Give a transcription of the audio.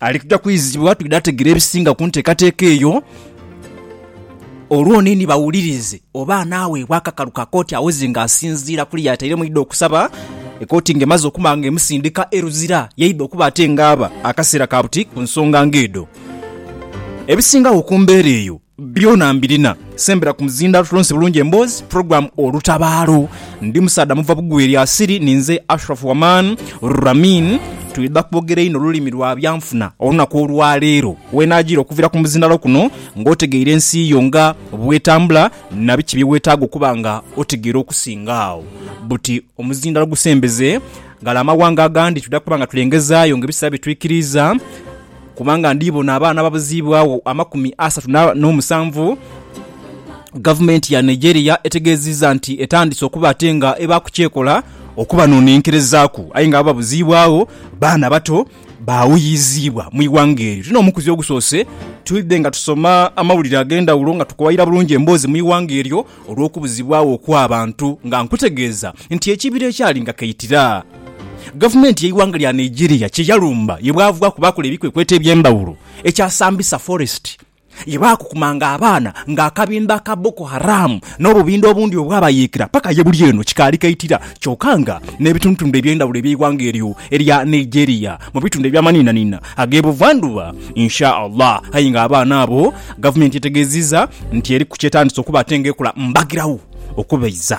Ali kuja kwizibwa twidha ategera ebisinga ku nteekateeka eyo. Olwo niini bawulirize oba anaaweebwa akakalu ka kooti awoze ng'asinziira ku ly'atairemu yaidha okusaba. Ekooti ng'emaze okuma ng'emusindika e Luzira, yaidha okuba ate ng'aba akaseera ka buti ku nsonga ng'edho. Ebisingagho ku mbeera eyo Byona mbirina. Sembera ku muzindaalo tulonse bulungi emboozi, program Olutabaalo. Ndi musaadha muva Bugwi erya Siri, ninze Ashraf Waman Ramin. Twidha kwogera inho lulimi lwa byanfuna olunaku olwa leero. Weenajiira okuvira ku muzindaalo kuno nga otegeire ensi yo nga bwetambula na biki bye wetaaga okuba nga otegeire okusinga agho. Buti omuzindaalo gusembeze ghale amawanga agandi twidha kuba nga tulengezaayo nga ebiseera bwe twikiriiza. kubanga ndiibona abaana ababuziibwagho amakumi asatu n'omusanvu. Gavumenti ya Nigeria etegeezizza nti etandise okuba ate nga eba ku kyekola okubanonenkerezaaku aye nga ababuziibwagho baana bato baawuyiziibwa mu ighanga eryo. Tino omukuzi ogusoose, twidde nga tusoma amawulire ag'endhawulo nga tukowaira bulungi emboozi mu ighanga eryo. Olw'okubuzibwagho okw'abantu nga nkutegeeza nti ekibira ekyali nga kaitira gavumenti y'eighanga lya Nigeria kye yalumba ye bwavaaku baakola ebikwekweto eby'endhawulo ekya Sambisa Forest ye baakukumanga abaana nga akabinda aka Boko Haram n'obubinda obundi obwabayeekera paka ye buli eno kikaali kaitira kyoka nga n'ebitundutundu eby'endhawulo eby'eighanga eryo erya Nigeria mu bitundu eby'amaniinaniina ag'e Buvandhuba Insha Allah aye nga abaana abo Gavumenti etegeezizza nti eriku ky'etandise okuba ate nga ekola mbagirawo okubaiza.